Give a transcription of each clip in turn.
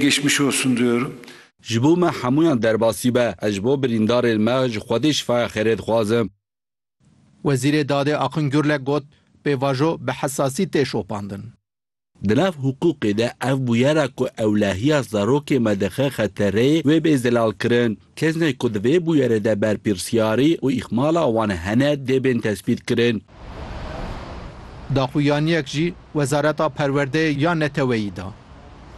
Geçmiş olsun diyorum. Ji bo me hemûyan derbasî be. Ez ji bo birîndarên me ji Xwedê şifaya xêrê dixwazim. Wezîrê Dadê Akın Gürlek got, Pêvajo bi hesasî tê şopandin. Di nav hiqûqê de ev bûyera ku ewlehiya zarokê me dixe xetereyê wê bê zelalkirin. Kesnê ku di vê bûyerê de berpirsyarî û îhmala wan hene dê bên tespîtkirin. Daxuyaniyek jî Wezareta Perwerdeyê ya Neteweyî da.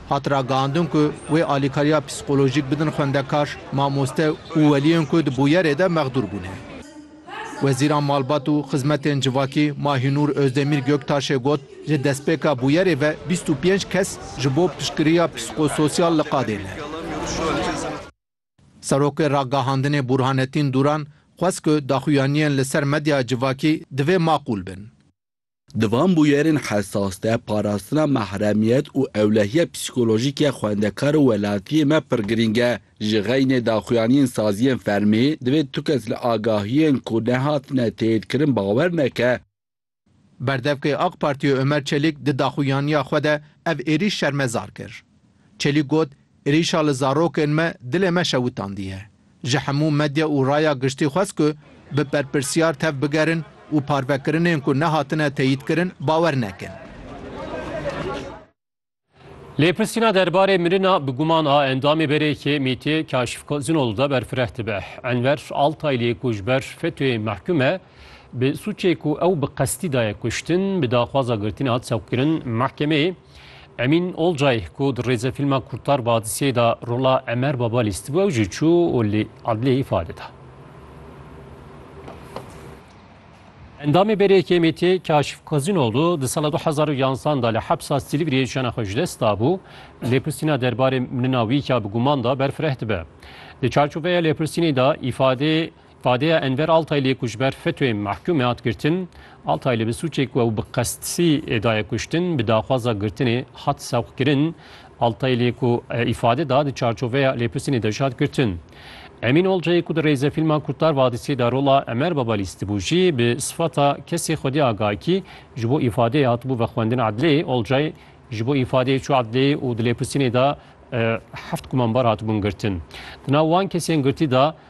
Hat ragihandin ku wê alîkariya psîkolojîk bidin xwendekar, mamoste û weliyên ku di bûyerê de mexdûr bûne. Wezîra Malbat û Xizmetên Civakî Mahînûr Ozdemîr Göktaşê got, Ji destpêka bûyerê ve bîst û pênc kes ji bo piştgiriya psîkososyal li qadê ne. Serokê Ragihandinê Burhanetîn Dûran xwest ku daxuyaniyên li ser medyaya civakî divê maqûl bin. Di van bûyerên hesas de parastina mahremiyet û ewlehiya psîkolojîk ya xwendekar û welatiyê me pir girîng e. Ji xeynê daxuyaniyên saziyên fermî, divê tu kes li agahiyên ku nehatine teyîdkirin bawer neke. Berdevkê AK Partiyê Ömer Çelik di daxuyaniya xwe de ev êrîş şermezar kir. Çelik got, Êrîşa li zarokên me dilê me şewitandiye. Ji hemû medya û raya giştî xwest ku bi berpirsyar tev bigerin û parvekirinên ku nehatine teyîdkirin bawer nekin. Lê pirsîna derbarê mirina bi guman a endamê berêkê Mîtê Kaşif Kozinol de berfireh dibe. Enver Altaylê ku ji ber FETÖ'yê mehkûm e, bi sûcê ku ew bi qestî daye kuştin, bi daxwaza girtinê hat sewqkirin mehkemeyê. Emîn Olcay ku di rêzefîlma Kurtar Badisiyê de rola Emer Baba lîstibû ew jî çû û li edliyê îfade da. Endamê berê KMT Kaşif Kozînoglu di sala du hezar û yanzdeh de li hepsa Silîvriyê jiyana xwe ji dest dabû, lêpirsîna derbarê minina wî ka bi guman da ber fireh dibe. Di çarçoveya lêpirsînê de îfadê îfadeya Enver Altaylê ku ji ber FETÖ'yê mehkûm hat girtin, Altayli bi sûcê ku ew bi qesdsî daye kuştin, bi daxwaza girtinê hat sewqkirin Altay lê ku îfade da di çarçoveya lêpirsînê de jî hat girtin. Emîn Olcayê ku di rêzefîlma Kurtlar Vadisî de rola Emer Babalî stibû jî bi sifata kesê Xwedî Agakî ji bo îfadeyê hatibû vexwendin edleyê. Olcay ji bo îfadeyê çû edleyê û di lêpirsînê de heft kumanbar hatibûn girtin. Di nav wan kesên girtî de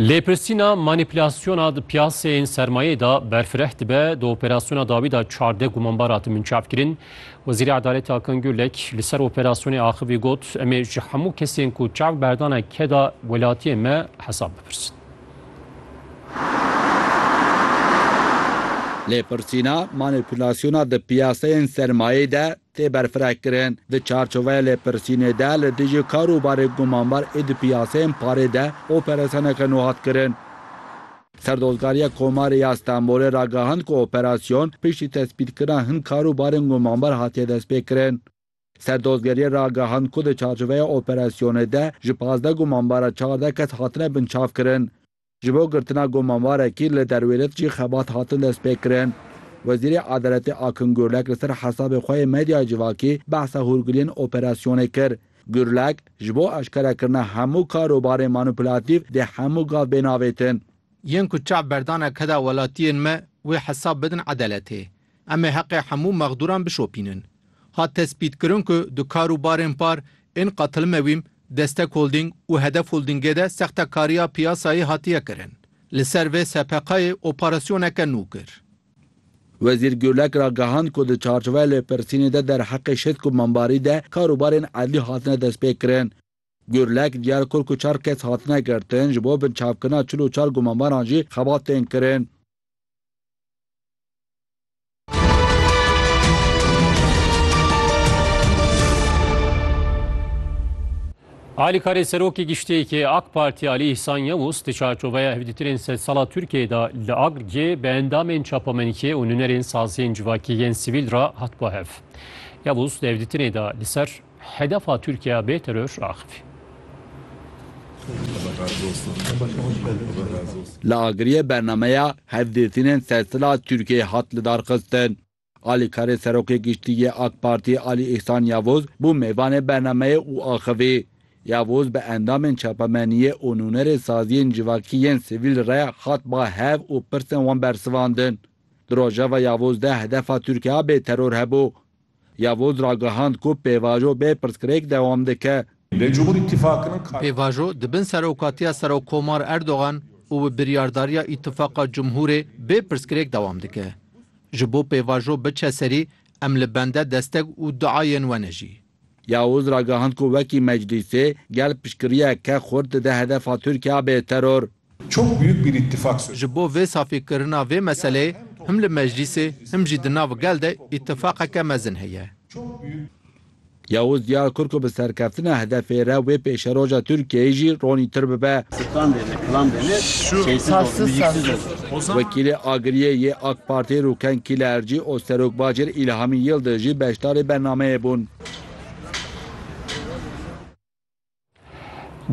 Lêpirsîna manîpulasyona di piyaseyên sermayeyê de berfireh dibe, di operasyona dawî de çardeh gumanbar hatin binçavkirin. Wezîrê Edaletê Hakan Gürlek li ser operasyonê axivî got, Em ê ji hemû kesên ku çav berdane keda welatiyên me hesab bipirsin. Lêpirsîna manîpulasyona di piyaseyên sermayeyê de tê berfirehkirin di çarçoveya lêpirsînê de li dijî karûbarê gumanbar ê di piyaseyên parê de operasiyoneke nû hat kirin. Serdozgariya Komarê ya Stenbolê ragihand ku operasyon piştî tespîtkirina hin karûbarên gumanbar hatiye destpêkirin. Serdozgeriyê ragihand ku di çarçoveya operasyonê de ji pazdeh gumanbaran çardeh kes hatine binçavkirin. Ji bo girtina gomanvarekî li derwêlet jî xebat hatin destpêkirin. Wezîrê Edaletê Akin Gurlek li ser hesabê xwe yê medyaya civakî behsa hûrgiliyên operasyonê kir. Gurlek, ji bo eşkerekirina hemû karobarên manûplatîf dê hemû gav bêne avêtin. Yên ku çav berdane keda welatiyên me wê hesab bidin edaletê. Em ê heqê hemû mexdûran bişopînin. Hat tespîtkirin ku di kar û barên par ên Qatilmewîm, Destek Holdîng û Hedef Holdîngê de sextekariya piyasayê hatiye kirin. Li ser vê SPK'yê operasyoneke nû kir. Wezîr Gurlek ragihand ku di çarçoveya lêpirsînê de derheqê şêst komembarî de kar û barên edlî hatine destpêkirin. Gurlek diyar kir ku çar kes hatine girtin, ji bo binçavkirina çil û çar gumembaran jî xebat tên kirin. Alîkarê Serokê Giştiyê AK Partî Alî Îhsan Yewûs di çarçoveya hevdîtirên sedsala Tirkiyeyê de li Agirgê bi endamên çapemenikê û nûnerên saziyên civakî yên sivîl re hat guhev. Yewûs di hevdîtinê de li ser Hedefa Tirkiye bê teror raxivî. Li agiriyê bernameya hevdîtinên sersila Tirkiyeyê hat lidarxistin. Alîkarê Serokê Giştî yê Ak Partî Alî Îhsan Yavuz bû mêvanê bernameyê û axivî. Yavuz bi endamên çapemeniyê û nûnerê saziyên civakî yên sivîl re hat ba hev û pirsên wan bersivandin. Di rojeva Yavuz de hedefa Tirkiye bê teror hebû. Yavuz ragihand ku pêvajo bê pirsgirêk dewam dike. Pêvajo di bin serokatiya Serokkomar Erdogan û bi biryardariya Îtifaqa Cumhurê bê pirsgirêk dewam dike. Ji bo pêvajo biçe serî em li bende desteg û duayên we ne jî. Yavuz ragihand ku wekî Meclîsê gel piştgiriyeke xurt dide hedefa Tirkiya bê teror. Çok büyük bir ittifak söz. Ji bo vê safî kirina vê meseleyê him li meclîsê him jî di nav gel de îttifaqeke mezin heye. Yavuz Diyarkur ku bi serkeftina hedefê re wê pêşeroja Tirkiyeyê jî ronîtir bibe. Wekîlê Agiriyê yê AK Partiyê Rûken Kîlercî û Serokwezîr Îlhamî Yildiz jî beşdarê bernameyê bûn.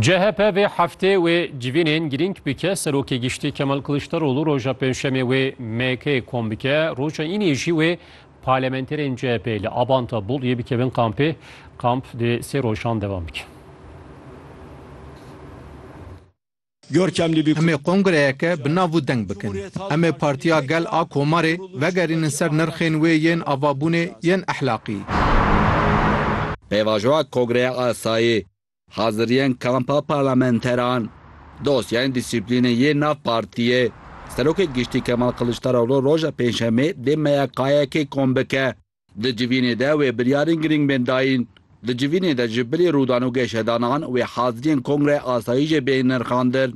CHP vê heftê wê civînên girîng bike Serokê Giştî Kemal Kiliçdaroglu roja pênşemê wê MK'ê kom bike roja înê jî wê parlamenterên CHP'ê li Abanta Boliyê bikevin kampê kamp dê sê rojan devam bike. Em ê kongreyeke bi nav û deng bikin. Em ê Partiya Gel a Komarê vegerînin ser nirxên wê yên avabûnê yên ehlaqî. Pêvajoya Kongreya Asayî, Haziriyên Kampa Parlamenteran, Dosyayên Dîsîplînê yên nav Partiyê, Serokê Giştî Kemal Kiliçdaroglu roja Pêncşemê dê MYK'yekê kom bike. Di civînê de wê biryarên girîng bên dayîn. Di civînê de ji bilî rûdan û geşedanan wê haziriyên kongre asayîjê bên nirxandin.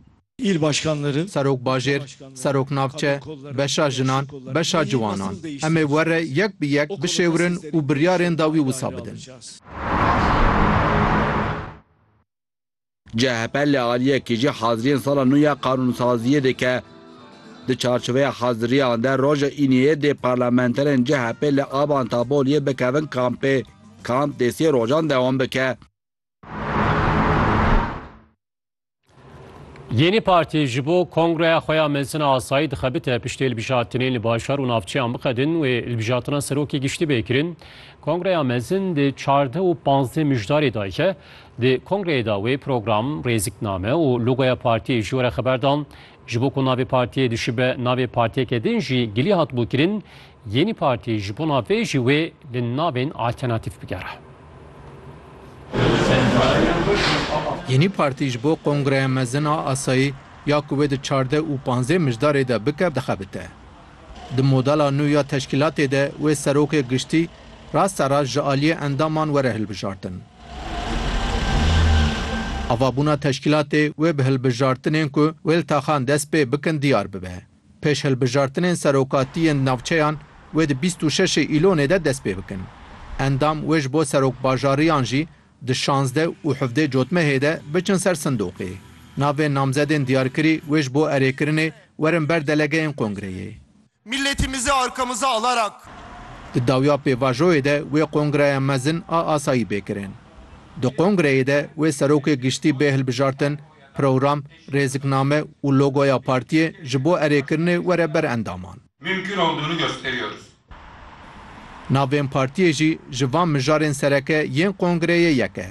Il başkanları, Serok bajêr, serok navçe, beşa jinan, beşa ciwanan. Em ê were yek bi yek bişêwirin û biryarên dawî wisa bidin. CHP li aliyekê jî haziriyên sala nû ya qanûnsaziyê dike. Di çarçoveya haziriyan de roja Îniyê dê parlamenterên CHP'ê li Aban Taboliyê bikevin kampê. Kamp dê sê rojan dewam bike. Yenî Partî ji bo kongreya xwe ya mezin a asayî dixebite piştê hilbijartinên li bajar û navçeyan biqedin wê hilbijartina serokê giştî bê kirin. Kongreya mezin di çardeh û panzdeh mijdarê dayike. Di kongreyê de wê program, rêzikname û logoya partiyê ji we re xeber da. Ji bo ku navê partiyê dişibe navê partiyeke din jî gilî hatibû kirin, Yenî Partî ji bona vê jî wê li navên alternatîf bigere. Yenî Partî ji bo Kongreya Mezin a Asayî ya ku wê di çardeh û panzdeh mijdarê de bike dixebite. Di modela nû ya teşkîlatê de wê serokê giştî rasterast ji aliyê endaman were hilbijartin. Avabûna teşkîlatê wê bi hilbijartinên ku wêltaxan dest pê bikin diyar bibe. Pêş hilbijartinên serokatî yên navçeyan wê di bîst û şeşê îlonê de dest pê bikin. Endam wê ji bo serokbajariyan jî Di şazdeh û hevdeh cotmehê de biçin ser sindoqê. Navên namzedên diyarkirî wê ji bo erêkirinê werin ber delegeyên kongreyê. Mîlletîmizi arkamıza alarak. Di dawiya pêvajoyê de wê kongreya mezin a asayî bê kirin. Di kongreyê de wê serokê giştî bê hilbijartin, program, rêzikname û logoya partiyê ji bo erêkirinê were ber endaman. Mümkün olduğunu gösteriyoruz. Navên partiyê jî ji van mijarên sereke yên kongreyê yek e.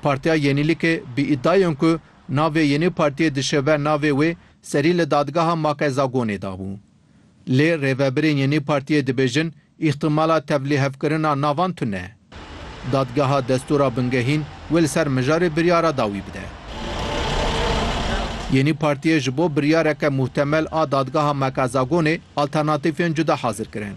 Partiya Yenîlîkê bi îdayên ku navê yê nê partiyê dişe ver navê wê serî li dadgeha Makezagonê dabû. Lê rêvebirên yê nê partiyê dibêjin îhtimala tevlihevkirina navan tune ye. Dadgeha destûra bingehîn wê li ser mijarê biryara dawî bide. Yenî Partiyê ji bo biryareke muhtemel a Dadgeha Mekazagonê alternatîfên cuda hazir kirin.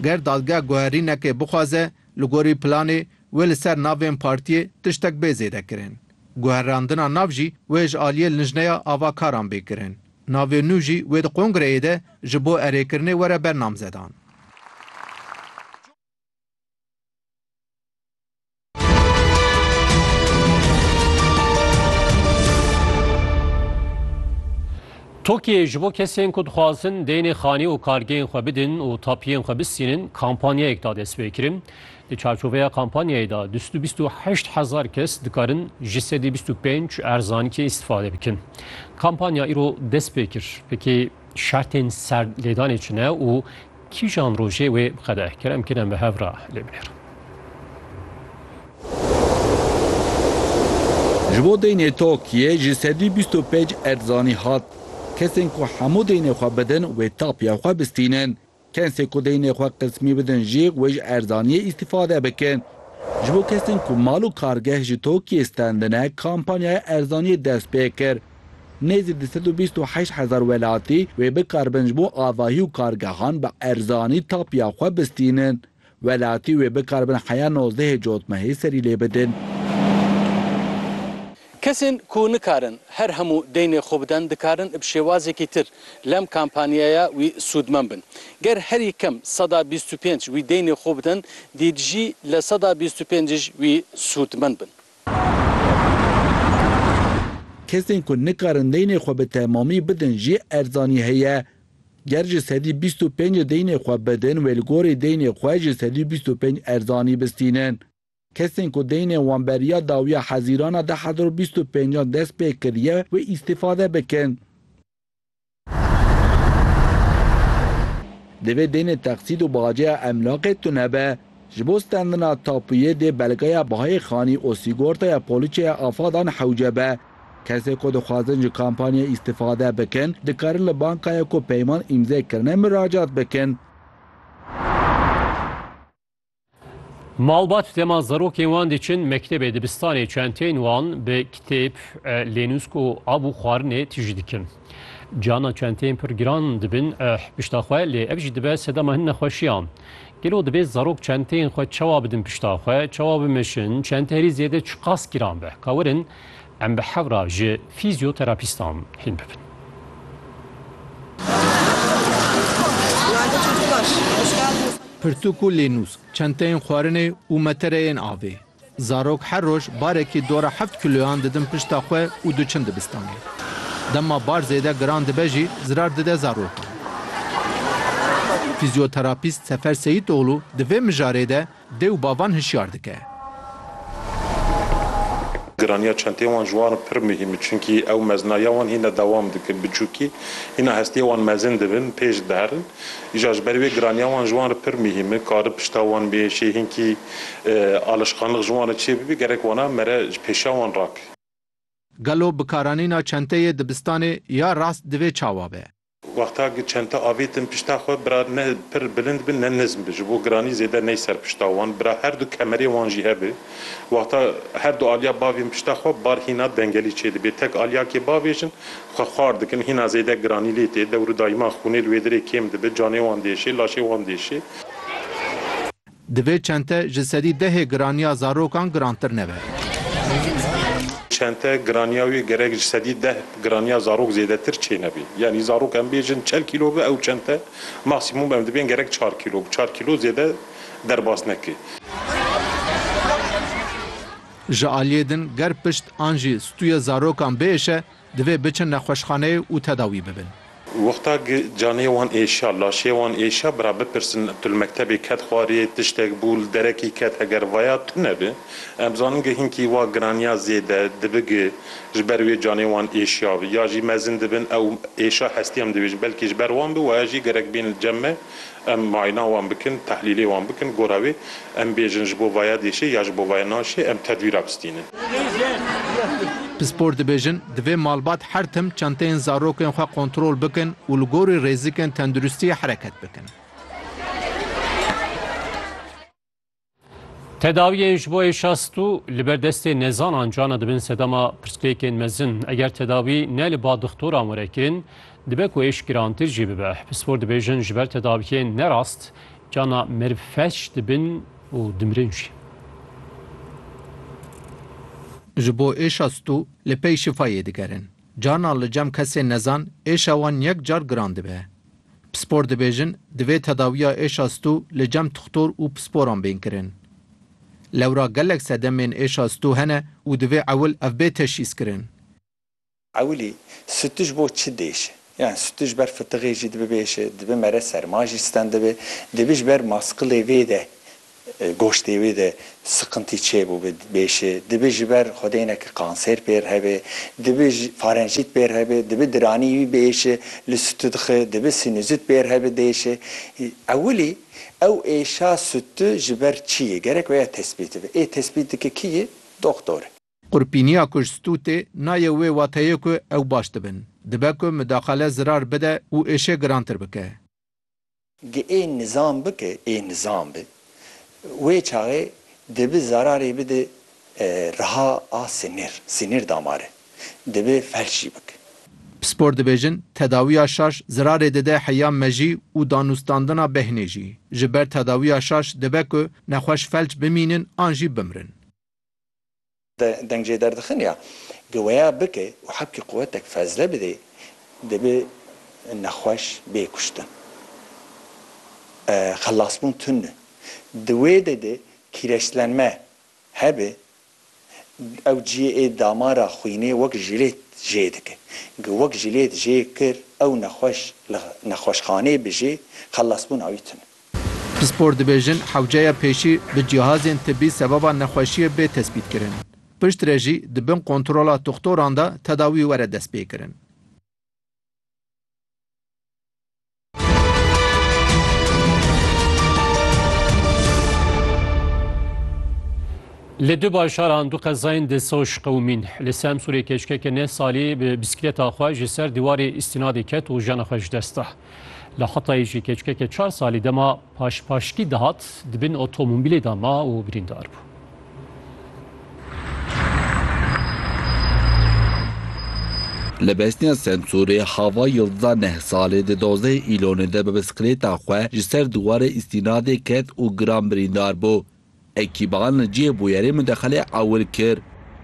Ger dadgeh guherînekê bixwaze, li gorî planê wê li ser navên Partiyê tiştek bê zêdekirin. Guherandina nav jî wê ji aliyê lijneya ava karan bê kirin. Navê nû jî wê di kongreyê de ji bo erêkirinê were ber namzedan. Tokyo'yê ji bo kesên ku dixwazin deynê xanî û kargeyên xwe bidin û tapiyên xwe bistînin kampanyayek da destpêkirin. Di çarçoveya kampanyayê de du sed û bîst û heşt hezar kes dikarin ji sedî bîst û pênc erzanîkê îstîfade bikin. Kampanya îro dest pê kir. Pekê şertên ser lêdanê çi ne û Kîjan rojê wê bi qedeh kir em kêne bi hev re lê bihêr. Ji bo deynê Tokiyê ji sedî bîst û pênc erd zanî hat. Kesên ku hemû deynê xwe bidin wê tapiya xwe bistînin. Kensê ku deynê xwe qismî bidin jî wê ji erzaniyê îstîfade bikin. Ji bo kesên ku mal û kargeh ji Tokiyê stendine kampanyaya erzaniyê dest pê kir. Nêzî du sed û bîst û heşt hezar welatî wê bikaribin ji bo avahî û kargehan bi erzanî tapiya xwe bistînin. Welatî wê bikaribin heya nozdehê cotmehê serî lê bidin. Kesên ku nikarin her hemû deynê xwe bidin dikarin bi şêwazekî tir lem kampanyaya wî sûdmend bin. Ger herî kem seda bîst û pênc wî deynê xwe bidin dî dijî li seda bîst û pênc wî sûdmend bin. Kesên ku nikarin deynê xwe bi temamî bidin jî erzanî heye. Ger ji sedî bîst û pêncê deynê xwe bidin wê li gorî deynê xwe ji sedî bîst û pênc erzanî bistînin. Kesên ku deynên wan beriya dawiya Hezîrana du hezar û bîst û pêncan dest pê kiriye wê îstîfade bikin. Divê deynê teqsît û bajeya emlakê tune be. Ji bo stendina tapuyê dê belgeya bihayê xanî û sîgortaya polîçeya afadan hewce be. Kesên ku dixwazin ji kampanyê îstîfade bikin, dikarin li bankaya ku peyman îmze kirine miracat bikin. Malbat dema zarokên wan diçin mektebê dibistanê çenteyên wan bi kitêb, lênûsk û av û xwarinê tij dikin. Cihana çenteyên pir giran dibin pişta xwe lê ev jî dibe sedema hin nexweşiyan. Gelo divê zarok çenteyên xwe çawa bidin pişta xwe, çawa bimeşin, çente herî zêde çiqas giran be. Kawerin Em bi hev re ji fîzyoterapîstan hîn bibin. Pirtûk û lênûsk, çenteyên xwarinê û metereyên avê. Zarok her roj barekî dora heft kîloyan didin pişta xwe û diçin dibistanê. Dema bar zêde giran dibe jî zirar dide zarokan. Fîzyoterapîst Sefer Seyîtoglu di vê mijarê de Dê û bavan hişyar dike. Giraniya çenteyên wan ji wan pir muhîm e çunkî ew mezina ya wan hîna dewam dikin biçûkî hîna hestiyê wan mezin dibin pêş diherin îja ji ber wê giraniya wan ji wan re pir muhîm e kari pişta wan bê şê hînkî alişqanliq ji wan re çê bibî gerek wana mere ji pêşiya wan rak. Gelo bikaranîna çenteyê dibistanê ya rast divê çawa be? Wexta ku çenta avêtin pişta xwe, bira ne pir bilind bi ne nizm bi, ji bo giranî zêde ney ser pişta wan, bira her du kemerê wan jî hebe. Wexta her du aliya bavên pişta xwe bar hîna dengelî çêdibe. Tek aliyakê bavê jin xwe xwar dikin, hîna zêde giranî lê tê. Dewr û dayman xûnê li wê dirê kêm dibe, canê wan diêşê, laşê wan diêşê. Divê çente ji sedî dehê giraniya zarokan girantir nebe. Çente giraniya wê gerek ji sedî deh giraniya zarok zêdetir çê nebe. Yanî zarok em bêjin çel kîlo be ew çente maksîmûm em dibên gerek çar kîlo be. Çar kîlo zêde derbas neke. Ji aliyê din ger pişt an jî stûyê zarokan biêşe Divê biçin nexweşxaneyê û tedawî bibin. Wexta canê wan êşiya, laşê wan êşiya bira bipirsin tu li mektebê ket xwarê, tiştek bû, li derekî ket heger vaya tu nebe, em zanin ge hinkî wa giraniya zêde dibi ge ji ber wê canê wan êşiya bi. Ya jî mezin dibin ew êşa hestî em dibêjin belkî ji ber wan bi waya jî gerek bên li cem me Em muayena wan bikin, tehlîlê wan bikin, gora wê em bêjin ji bo vaya dêşê ya ji bo vaya naşê em tedwîra bistînin. Pispor dibêjin, divê malbat her tim çenteyên zarokên xwe kontrol bikin û li gorî rêzikên tenduristiyê hereket bikin. Tedawiyên ji bo êşa stû li ber destê nezanan cana dibin sedema pirsgirêkên mezin. Eger tedawî ne li ba dixtoran were kirin, dibe ku êş girantir jî bibe. Pispor dibêjin ji ber tedawiyên ne rast cana meriv felç dibin û dimirin jî. Ji bo êşa stû li pey şifayê digerin. Carna li cem kesên nezan êşa wan yek car giran dibe. Pispor dibêjin divê tedawiya êşa stû li cem tixtor û pisporan bên kirin. Lewra gelek sedemên êşa stû hene û divê ewil ev bê teşhîs kirin. Ewilî, stû ji bo çi dêşe? Yan stû ji ber fitiqê jî dibibêje, dibi mere serma jî stend dibe, dibi ji ber maskilê vê de Goştê wê de siqintî çêbû bi bêşê, dibi ji ber xwedêneke kansêr pêr hebê, dibi farenjît pêr hebê, dibi diranî wî bi êşê li sûtû dixê, dibi sînûzît pêr hebê di êşê. Ewilî ew êşa sûtû ji ber çi yê gerek wê ya tespît bibe. Ê tespît dike kî yê? Doxtor. Qurpîniya ku ji sûtû tê nayê wê wateyê ku ew baş dibin. Dibe ku midaxale zirar bide û êşê girantir bike. Ge ê nizam bi ke ê nizam bi, wê çaxê dibi zararê bidi riha a sinir, sinir damare, dibi felç jî bik. Pispor dibêjin, tedawiya şaş zirarê dide heya mejî û danûstandina behnê jî. Ji ber tedawiya şaş dibe ku nexweş felç bimînin an jî bimrin. Deng jê derdixin ya giweya bike û hebkî quwetek fezle bidê dibe nexweş bê kuştin. Xelasbûn tund e. Di wê de de kîreçlenme hebe ew ciyê ê damara xwînê wek jilêt jê dike. Gi wek jilêt jê kir ew nexweş li nexweşxanê bijê xelasbûna wî tund e. Pispor dibêjin hewceya pêşî bi cihazên tibî sebaba nexweşiyê bê tespîtkirin. Piştre jî di bin kontrola toxtoran de tedawî were destpêkirin. Li du bajaran du qezayên di Soş qewimîn. Li Semsûrê keşkeke neh salî bi bîskleta xwe ji ser dîwarê îstînadê ket û jiyana xwe ji dest da. Li Hatayê jî keçikeke çar salî dema paşpaşkî dihat di bin otomobîlê de ma û birîndar bû. Li Besniya Semsûrê hava Yildiza Nehsalê di dozdehê Îlonê de bi bisiklêta xwe ji ser dîwarê îstînadê ket û giran birîndar bû. Ekîban li cihê bûyerê midexelê ewil kir.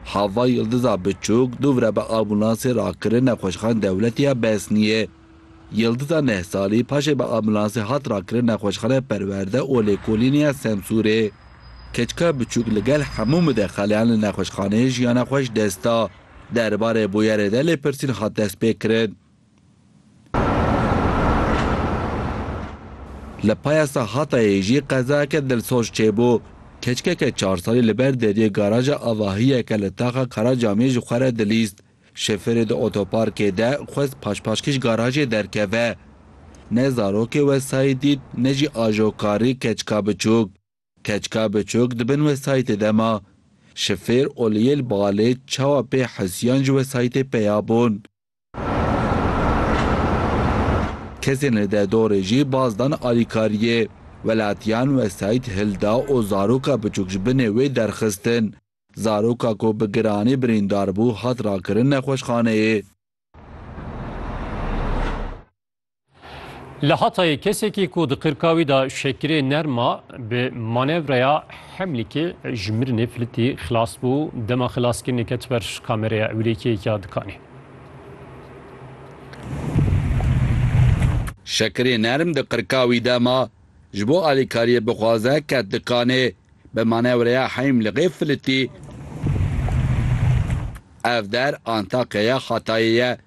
Hava Yildiza Biçûk dûvre bi ambûlansê rakirin Nexweşxane Dewletî ya Besnîyê. Yildiza neh salî paşê bi ambûlansê hat rakirin Nexweşxane Perwerde û Lêkolînê ya Semsûrê. Keçika Biçûk li gel hemû midexeleyan li nexweşxaneyê jiyana xwe ji dest da. Derbarê bûyerê de lêpirsîn hat destpêkirin. Li payasa Hatayê jî qezayeke dilsoz çêbû. Keçikeke çar salî li ber deriyê garaja avahiyeke li taxa Karacamiyê ji xwe re dilîst. Şofêrê di otoparkê de xwest paşpaşkîş garajê derkeve. Ne zarokê wesayît dît ne jî ajokarî keçika biçûk. Keçika biçûk di bin wesayîtê de ma. Şofêr Oliyêl Balê çawa pê Husîyan ji wesayîtê peya bûn. Kesên li derdorê jî baz dan alîkariyê welatiyan wesayît hilda û zaroka biçûk ji binê wê derxistin. Zaroka ku bi giranî birîndar bû hat rakirin nexweşxaneyê. Li Hatayê kesekî ku di qirkawî de şekirê nerm ma bi manevreya Hemlîkê ji mirinê filitî xilas bû. Dema xilaskirinê ket ber kamereya ewlêkiyêka dikanê. Şekirê nerm di qirkawî de ma ji bo alîkariyê bixwaze ket dikanê. Bi manevreya Heymliqê filitî. Ev der Antakya ya Hatayê ye.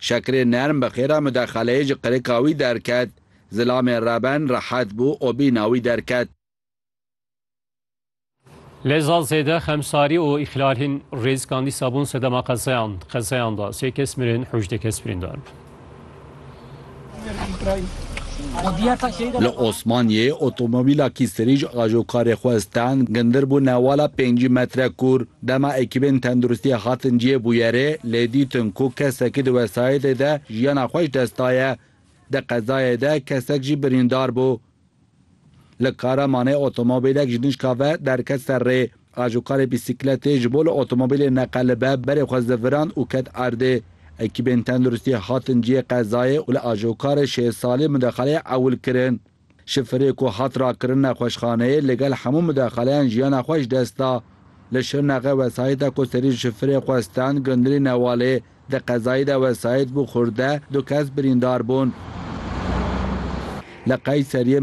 Şekirê nerm bi xêra mudexeleyê ji qirika wî derket. Zilamê reben rehet bû û bîna wî derket. Lê zal zêde xemsarî û îxlalên rêzikan dîsa bûn sedema qezeyan. Qezeyan de sê kes mirin, hejdeh kes birîndar bûn. Li Osmaniyê otomobîla kîsirîj ajokarê xwe stand gindir bû newala pêncî metre kûr. Dema ekîbên tenduristiyê hatin cihê bûyerê lê dîtin ku kesekî di wesayetê de jiyana xwe ji dest daye. Di qezayê de kesek jî birîndar bû. Li Kahramanê otomobîlek ji nişka ve derket ser rê. Ajokarê bîsîkletê ji bo li otomobîlê neqelibe berê xwe ziviran û ket erdê. Ekîbên tenduristî hatin cihê qezayê û li ajokarê şêst salî mudaxaleyê ewil kirin. Şifirê ku hat rakirin nexweşxaneyê li gel hemû mudaxaleyan jiyana xwe ji dest da. Li Şirnexê wesayîta ku serî şifirê xwe stand gundirî Newalê di qezayî de wesayît bû xurde, du kes birîndar bûn. Li Qeyseriyê